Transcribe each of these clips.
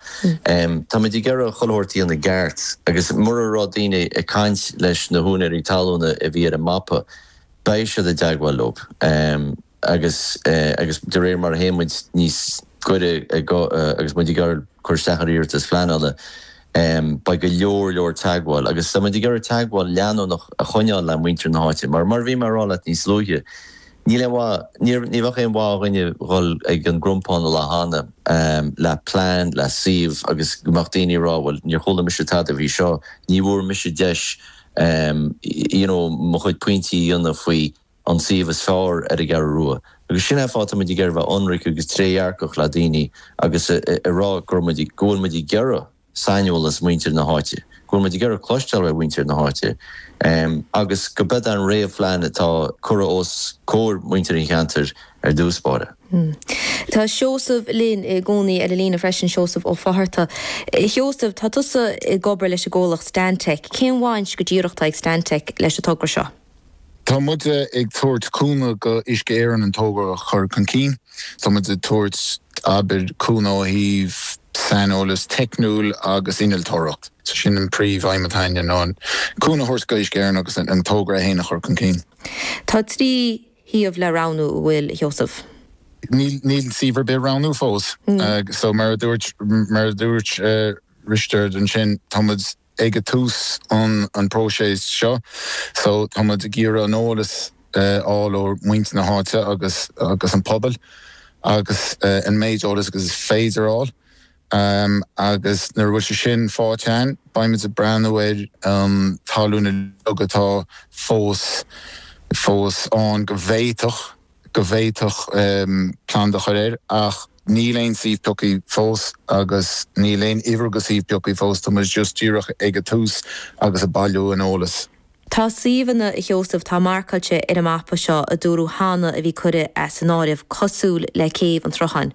Táimid ag iarraidh a chur faoi réir i gceart agus mura raibh daoine ag caint leis na húinéirí talúna a bhí ar an mapa, beidh siad i dteagmháil leob agus agus de réir mar a théann muid níos gaire agus muid ag iarraidh cur isteach ar iarratais phleanála, beidh go leor leor teagmháil agus táimid ag iarraidh teagmháil leanúnach a choinneáil le muintir na háite mar mar a bhí mé a rá leat níos luaithe. Níl aon mhaith, níor, ní bheadh aon mhaith a dhuine dhul ag an gCrompán an lá cheana, leath plean, leath suíomh agus go mbeadh daoine ag rá bhuel níor chuala mise tada faoi seo, ní bhfuair mise deis you know mo chuid pointí a dhéanamh faoi an suíomh is fearr ar an gCeathrú Rua. Agus sin é an fáth tá muid ag iarraidh bheith ionraic agus trédhearcach le daoine agus a rá go raibh muid, go bhfuil muid ag iarraidh. saineolas mhuintir na háite, go bhfuil muid ag iarraidh cloisteáil ó mhuintir na háite agus gurb é an réamh-phlean atá curtha os comhair mhuintir an cheantair ar dtús báire. Tá Seosamh linn i gcónaí ar an líne freisin, Seosamh Ó Fátharta. Sheosaimh, tá tusa ag obair leis an gcomhlacht Stantec. Cén bhaint go díreach atá ag Stantec leis an togra seo? Tá muid ag tabhairt cúnamh go Uisce Éireann an togra a chur chun cinn. Tá muid ag tabhairt, abair, cúnamh ó thaobh saineolas teicniúil agus innealtóireacht. So sin an príomh-aidhm atá againne ná cúnamh a thabhairt go Uisce Éireann agus an togra é fhéin a chur chun cinn. Tá trí shuíomh le roghnú, an bhfuil a Sheosaimh? Níl suíomh ar bith roghnaithe fós. So mar a dúirt, mar a dúirt Risteard ansin, tá muid. ag tús an próiseas seo so tá muid ag iarraidh an eolas a fháil ó mhuintir na háite agus agus an pobal agus an méid eolas agus is féidir a fháil agus nuair a bhfuil sé sin faighte againn beidh muid ag breathnú ar an talamh uilig atá fós fós ann go bhféadfadh go bhféadfadh plant a chur air ach níl aon suíomh pioctha fós agus níl aon uimhir de shuíomh pioctha fós tá muid just díreach ag an tús agus ag bailiú an eolas. Tá suíomhanna, a Sheosaimh, atá marcáilte ar an mapa seo a dúradh cheana a bhí curtha as an áireamh, cosúil le Céibh an tSrutháin.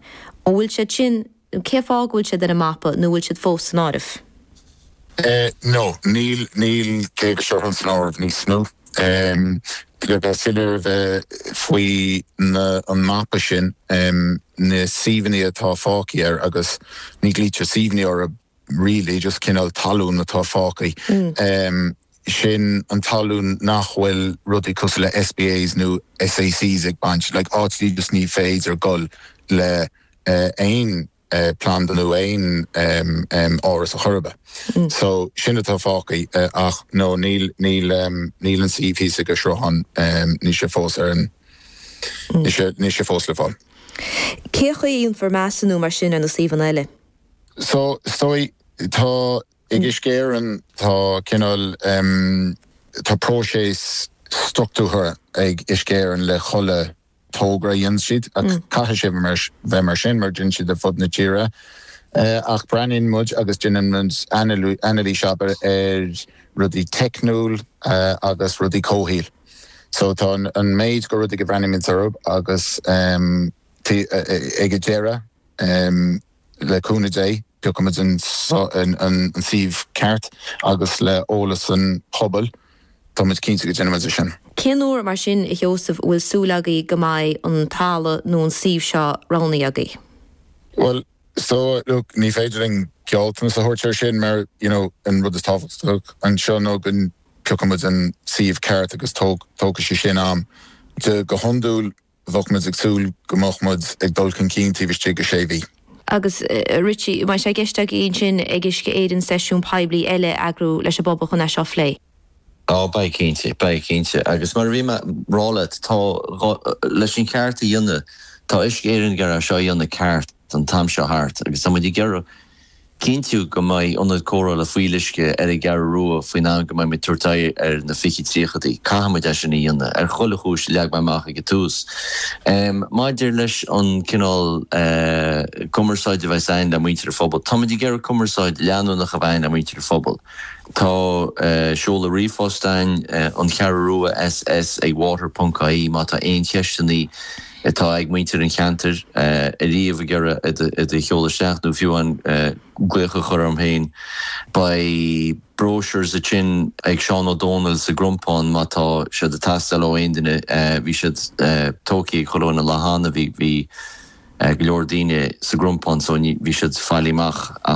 An bhfuil siad sin Cén fáth go bhfuil siad ar an mapa nó bhfuil siad fós san áireamh? No, níl, níl, Céibh an tSrutháin san áireamh níos mó. Le bheith soiléir a bheith faoi na, an mapa sin, na suíomhanna atá fágtha air, agus ní ghlaoitear suíomhanna orthu really, just cineál talún atá fágtha, sin an talamh nach bhfuil rudaí cosúil le SPAs nó SACs ag baint, like áit just nach féidir dul le aon planda nó aon áras ar chor ar bith. So, sin atá fágtha ach no, níl, níl, níl an suíomh thíos ag an Sruthán, níl sé fós ar an, níl sé, níl sé fós le fáil. Cén chaoi a ndéanfar measúnú mar sin ar na suíomhanna eile? So, is dóigh, tá, ag Uisce Éireann, tá cineál, tá próiseas structúrtha ag Uisce Éireann le chuile togra a dhéanann siad. Caithfidh sé bheith mar sin mar déanann siad ar fud na tíre. Ach breathnaíonn muid agus déanann muid anailís abair ar rudaí teicniúil agus rudaí comhshaoil. So tá an méid go rudaí go mbreathnaíonn muid orthu agus ag an deireadh, Le cúnamh Dé, piocfaidh muid an suíomh ceart agus le heolas an phobail, tá muid cinnte go ndéanfaidh muid é sin. Cén uair mar sin, a Sheosaimh, a bhfuil súil agaibh go mbeidh an talamh nó an suíomh seo roghnaithe agaibh? Bhuel, so, look, ní féidir linn gealltanas a thabhairt ar sin mar, you know, an rud is tábhachtach anseo ná go bpiocfaidh muid an suíomh ceart agus tógfaidh sé sin am. Go hiondúil, Bheadh muid ag súil go mbeadh muid ag dul chun cinn taobh istigh de sé mhí. Agus Richie, an mbeidh sé i gceist agaibh ansin ag Uisce Éireann seisiún poiblí eile a eagrú leis an bpobal chun é seo a phlé? Ó, beidh cinnte, beidh cinnte. Agus mar a bhí mé ag rá leat, tá, leis an gceart a dhéanamh, tá Uisce Éireann ag iarraidh é seo a dhéanamh ceart. an t-am seo thart agus tá muid ag iarraidh cinntiú go mbeidh ionad cóireála fuíolluisce ar an gCeathrú Rua faoin am go mbeidh muid ag tabhairt aghaidh ar na fiche tríochadaí. Caithfidh muid é sin a dhéanamh, ar chuile chúis a leag mé amach ag an tús. Maidir leis an cineál cumarsáide a bheas againn le muintir an phobail, tá muid ag iarraidh cumarsáid leanúnach a bheith againn le muintir an phobail. Tá seoladh ríomhphost againn, An Cheathrú Rua SS ag water ponc ie má tá aon cheisteannaí, atá ag muintir an cheantair ariamh ag iarraidh iad a sheoladh isteach nó fiú an glaoch a chur orm féin. Beidh brochures againn ag Seán Ó Domhnaill sa gCrompán má tá siad ag teastáil ó aon duine. Bhí siad tógthaí go léir an lá cheana, bhí go leor daoine sa gCrompán so bhí siad bailithe amach.